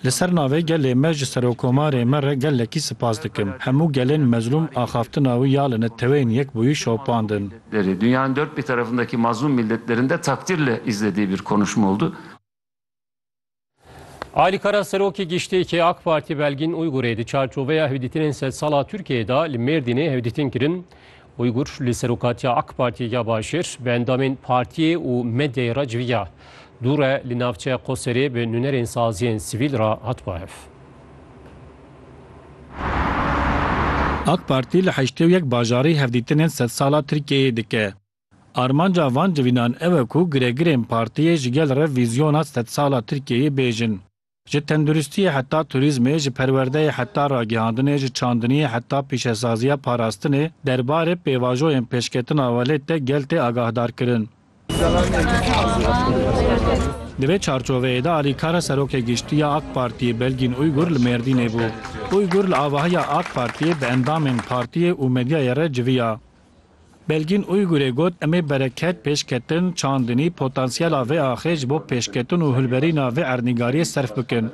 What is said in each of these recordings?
Li ser navê gelê me ji Serokomarê me re gelekî sipas dikim. Hemû gelên mezlûm axaftina wî ya li Neteweyên Yekbûyî şopandin. Alî Kara Serokê Giştî yê AK Partî Belgîn Uygurê di çarçoveya hevdîtinên sedsala Tirkiyeyê de li Mêrdînê hevdîtin kirin Uygur li serokatiya AK Partiyê ya Başêr bi endamên partiyê û medyayê re civiya. Dûre li navçeya Qoserê bi nûnerên saziyên sivîl re hat bahev. AK Partî li heştê û yek bajarî hevdîtinên sedsala Tirkiyeyê dike. Armanca van civînan ew e ku giregirên partiyê ji gel re vîzyona sedsala Tirkiyeyê bêjin. Ji tenduristiyê heta turîzmê, ji perwerdeyê heta ragihandinê, ji çandiniyê heta pîşesaziya parastinê, derbarê pêvajoyên pêşketina welêt de gel tê agahdarkirin. Di vê çarçoveyê de alîkara Serokê Giştî ya AK Partiyê Belgîn Uygur li Mêrdînê bû. Uygur li avahiya AK Partiyê bi endamên partiyê û medyayê re civiya. Belgîn Uygurê got, Em ê bereket, pêşketin, çandinî, potansiyela vê axê ji bo pêşketin û hilberîna vê erdnîgariyê serf bikin.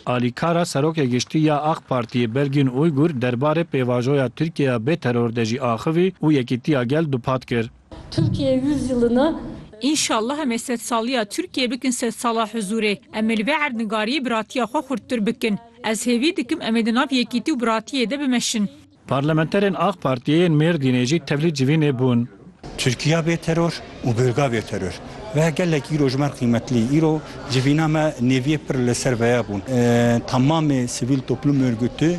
Alîkara Serokê Giştî ya Ak Partiyê Belgîn Uygur derbarê pêvajoya Tirkiyeya bê teror de jî axivî û yekîtiya gel dupat kir. Türkiye yüzyılını. Înşallah em ê sedsaliya Tirkiyeyê bikin sedsala huzûrê. Em ê li vê erdnigariyê biratiya xwe xurttir bikin. Ez hêvî dikim em ê di nav yekîtî û biratiyê de bimeşin. Parlamenterên Ak Partiyê yên Mêrdînê jî tevlî civînê bûn. Tirkiya bê teror û bêrga bê teror. Ve gelek îro ji me re qîmetlî. Îro civîna me nêviyê pir li ser veye bûn. Temamê sivîl toplûm ûrgûtî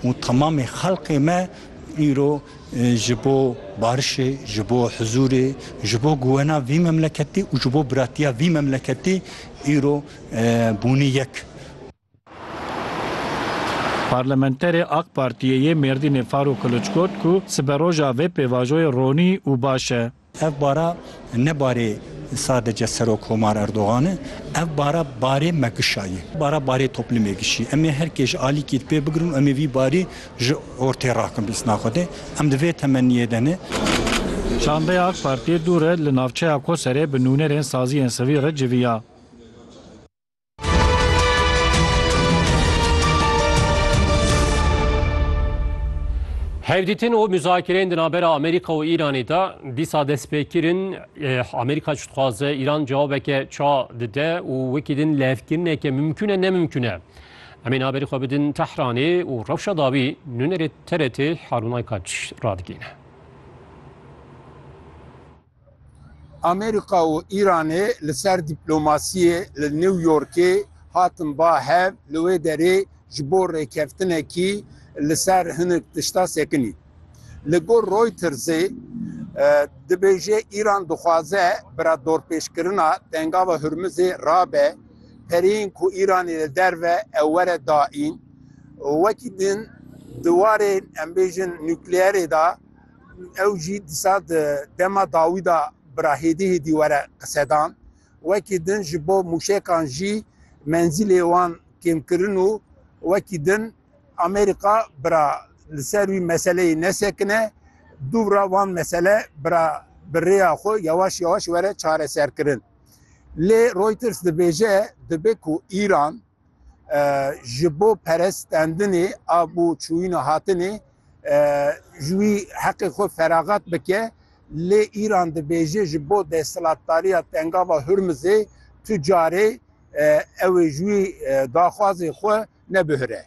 û temamê xelkê me îro ji bo barişê, ji bo huzûrê, ji bo guwena vî memleketî û ji bo biratiya vî memleketî îro bûnî yek. Parlamenterê AK Partiyê yê Mêrdînê Farûk Kiliç got ku siberoja vê pêvajoyê ronî û baş e. Ev bara ne barê sadece Serokkomar Erdogan e, ev bara barê me kişa ye. Bara barê toplumê kişî. Em ê her kê ji alîkî di pê bigirin û em ê vî barî ji ortê rakin bîsna Xwedê. Em di vê temenniyê de ne. Çandeya AK Partiyê dû re li navçeya Koserê bi nûnerên saziyên sivî re civiya. Hevdîtin û muzakireyên di navbera Amerîka û Îranê de dîsa destpêkirin. Amerîka çi dixwaze Îran cewabeke ça dide û wekî din levkirineke mimkûne nemimkûne. Em ê haberî xwe bidin Tehranê û rewşa dawî nûnerê TRT Harûnay Kaç radigihîne. Amerîka û Îranê li ser dîplomasiyê li New Yorkê hatin ba hev, li wê derê ji bo rêkeftinekî li ser hinek tişta sekinîn. Li gor Reutersê dibêje Îran dixwaze bira dorpêçkirina Tengava Hurmizê rabe, pereyên ku Îranê li derve ew were daîn. Wekî din di warê em bêjin nukleerê de, Ew jî dîsa di dema dawî de bi ra hêdî hêdî were qisedan. Wekî din ji bo mûşekan jî menzîlê wan kêmkirin û wekî din Amerîka bi ra li ser wî meseleyê nesekine, dûbra van mesele bi ra bi rêya xwe yewaş yewaş were çareserkirin. Lê Reuters dibêje dibe ku Îran ji bo perestendinê a bo çûyîna hatinê ji wî heqê xwe feraxat bike lê Îran dibêje ji bo desthilatdariya Tengava Hurmizê tu carê ew ê ji wî daxwazê xwe nebihire.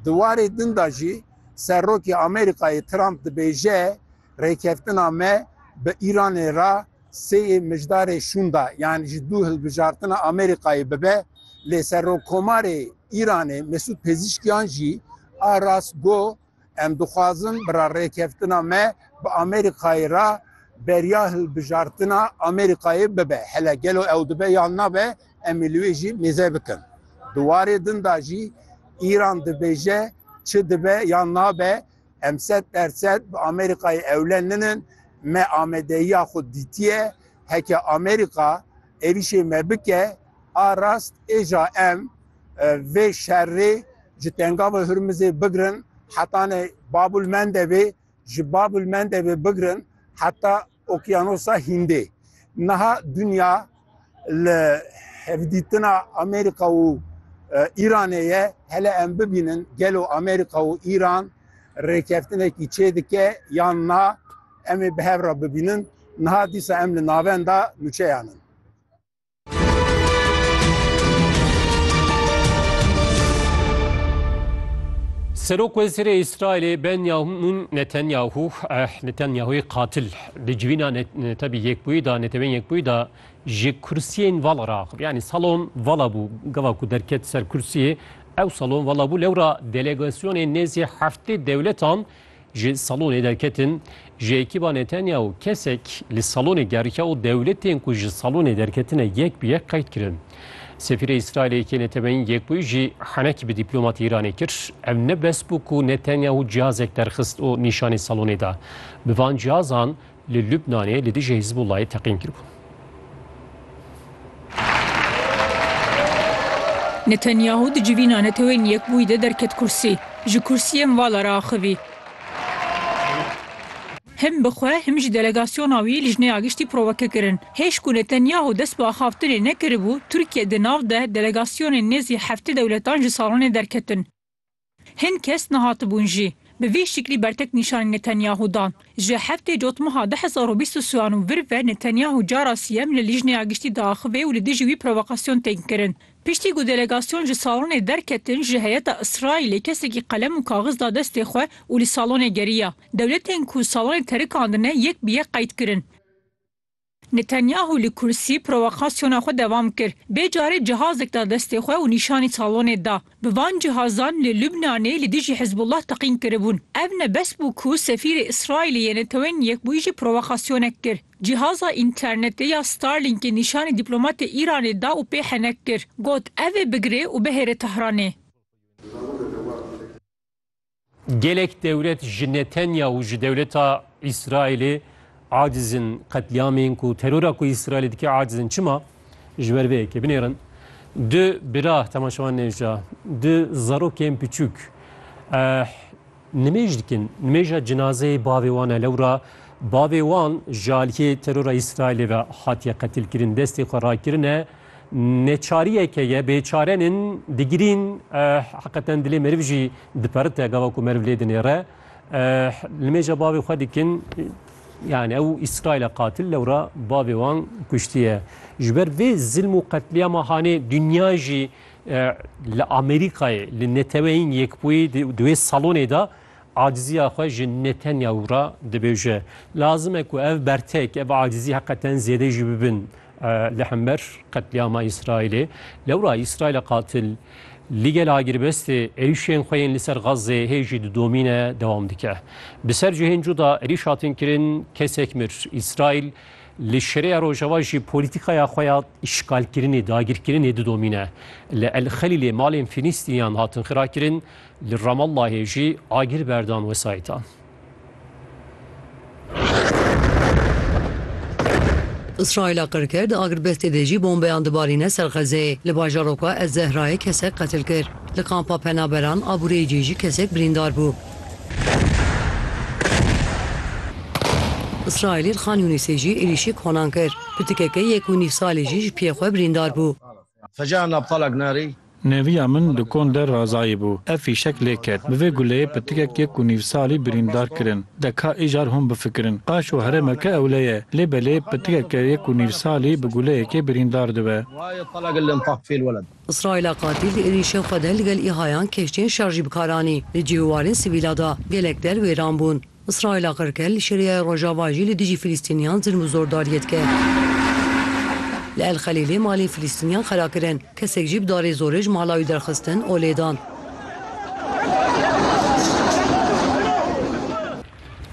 Di warê din de jî Serokê Amerîkayê Trump dibêje rêkeftina me bi Îranê re Seyê Mijdarê şûnda yan ji dû hilbijartina Amerîkayê bibe, lê Serokkomarê Îranê Mesûd Pezîşkiyan jî a rast got, Em dixwazin bi re rêkeftina me bi Amerîkayê re beriya hilbijartina Amerîkayê bibe. Hele gelo ew dibe yan nabe em ê li wê jî mêze bikin. Di warê din de jî Îran dibêje çi dibe yan nabe Em sed dersed bi Amerîkayê ewle ninin, me amadeyiya xwe dîtiye, heke Amerîka êrîşê me bike a rast êja em vê şerrê ji Tengava Hurmizê bigirin hetanê Babul Mendebê, ji Babul Mendebê bigirin heta Okyanosa Hîndê. Niha dinya li hevdîtina Amerîka û Îranê ye. Hele em bibînin gelo Amerîka û Îran rêkeftinekî çê dike yan na? Em ê bi hev re bibînin. Niha dîsa em li navenda nûçeyan in. Serok Wezîrê Îsraîlê Benyamîn Netanyahu Netanyahuyê qatil di civîna tebî yekbûyî da netewên yekbûyî da ji kursiyên vala ra axivî. Yanî salon vala bû gava ku derket ser kursiyê ew salon vala bû lewra delegasyonên nêzî heftê dewletan Ji salonê derketin, ji ekîba Netanyahu kesek li salonê geriya û dewletên ku ji salonê derketine yek bi yek qeyd kirin. Sefîrê Îsraîlê yekê neteweyîn yekbûyî jî henekî bi dîplomatê Îranê kir. Ev ne bes bû ku Netanyahu cihazek derxist û nîşanî salonê da. Bi van cihazan li Lubnanê li dijî Hizbulayê teqîn kiribûn. Netanyahu di civîna Netewên Yekbûyî de derket kursî, ji kursiyê mivala re axivî. Him bi xwe him jî delegasyona wî lijneya giştî proveke kirin. Hêj ku Netanyahu dest bi axaftinê nekiribû, Tirkiye di nav de delegasyonên nêzî heftê dewletan ji salonê derketin. Hin kes nehatibûn jî. Bi vî şiklî bertek nîşanî Netanyahu dan. Ji heftê cotmeha du hezar û bîst û siwan û vir ve Netanyahu cara siyem li Lîjneya Giştî diaxivê û li dijî wî provokasyon tên kirin. Piştî ku delegasyon ji salonê derketin ji heyeta Îsraîlê kesekî qelem û kaxiz da destê xwe û li salonê geriya. Dewletên ku salonê terikandine yek bi yek qeyd kirin. Netanyahu li kursî provokasyona xwe devam kir. Bê carê cihazek da destê xwe û nîşanî salonê da. Bi van cihazan li Lubnanê li dijî Hizbullah teqîn kiribûn. Ev ne bes bû ku sefîrê Îsraîlê yê Netewên Yekbûyî jî provokasyonek kir. Cîhaza înternetê ya Starlinkê nîşanî dîplomatê Îranê da û pê henek kir. Got, Ev ê bigirê û bihêre Tehranê. Gelek dewlet ji Netenya û ji dewleta Îsraîlê acizin qetlîamên ku terora ku Îsraîlê dike acizin çima? Ji ber vê yekê binêrin. Du bira temaşewan nêja, du zarokên piçûk nimêj dikin. Nimêja cinazeyê bavê wan e lewra bavê wan ji aliyê terora Îsraîlê ve hatiye qetilkirin, destê xwe rakirine. Neçariyeke ye bêçare nin digirîn heqeten dilê meriv jî diperite gava ku meriv lê dinêre. Li mêja bavê xwe dikin yani ew İsrail'e katil lewra bavê wan kuştiye. Ji ber vê zilm û qetliyama hanê dünya jî li Amerîkayê li neteweyên yekbûyî di wê salonê de Acizîya xwe ji netenya û re dibêje. Lazim e ku ev bertek, ev acizî heqeten zêde jî bibin li hember qetlîama Îsraîlê. Lewra Îsraîla qatil li gel a girbestê êrîşên xwe yên li ser Xazzeyê hê jî di domîne dewam dike. Bi ser cihên cuda êrîş hatin kirin, kesek mir. Îsraîl li Şereya Rojava jî polîtîkaya xwe ya îşgalkirinê, dagirkirinê didomîne. Li El Xelîlê malên Fîlîstîniyan hatin xirakirin, Li Ramallahê jî agir berdan wesayîtan. Îsraîla qirker di agirbestê de jî bombeyan dibarîne ser Xezeyê. Li bajaroka Ez Zehrayê kesek qetil kir. Li kampa penaberan Abureycê jî kesek birîndar bû. Îsraîlî li Xan Yûnîsê jî êrîşî konan kir. Pitikeke yek û nîv salî jî ji piyê xwe birîndar bû. Feca na btalak narî. Neviya min di kon de Razayî bû. Ev fîşek lê ket. Bi vê guleyê pitikek yek û nîv salî birîndar kirin. De ka îcar hûn bifikirin. Qaşo herêmeke ewle ye. Lê belê pitikeke yek û nîv salî bi guleyekê birîndar dibe. Îsraîla qatîl di êrîşên xwe de li gel îhayan kehçeyên şer jî bi kar anî. Li cih û warên sivîla da gelek der wêran bûn. Îsraîla qirke li Şîriyeyê Rojava jî li dijî Filîstîniyan zilm û zordariyê dike. Li El Xelîlê malên Filîstîniyan xera kirin, kesek jî bi darê zorê ji mala wî derxistin û lêdan.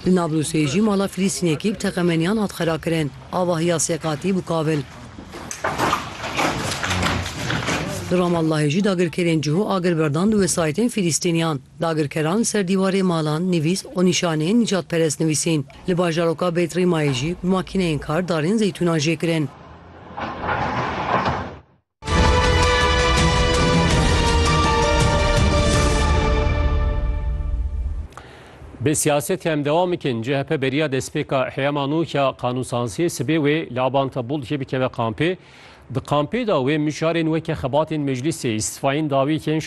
Li Nablûsê jî mala Filîstînekî bi teqemeniyan hat xera kirin, avahiya sê qatî bû kavil. Li Ramallahê jî dagirkerên cihû agir berdan di wesayîtên Filîstîniyan. Dagirkeran ser dîwarê malan nivîs û nîşaneyên nîcadperest nivîsîn. Li bajaroka Beit Rîmayê jî bi makîneyên kar darên zeytûnan jê kirin. Bi siyasetê em dewam bikin. CHP beriya destpêka heyama nû ya qanûnsansiyê sibê wê li Abanta Bûl jê bikeve kampê. Di kampê de wê mijarên weke xebatên meclîsê, îstifayên dawiyekên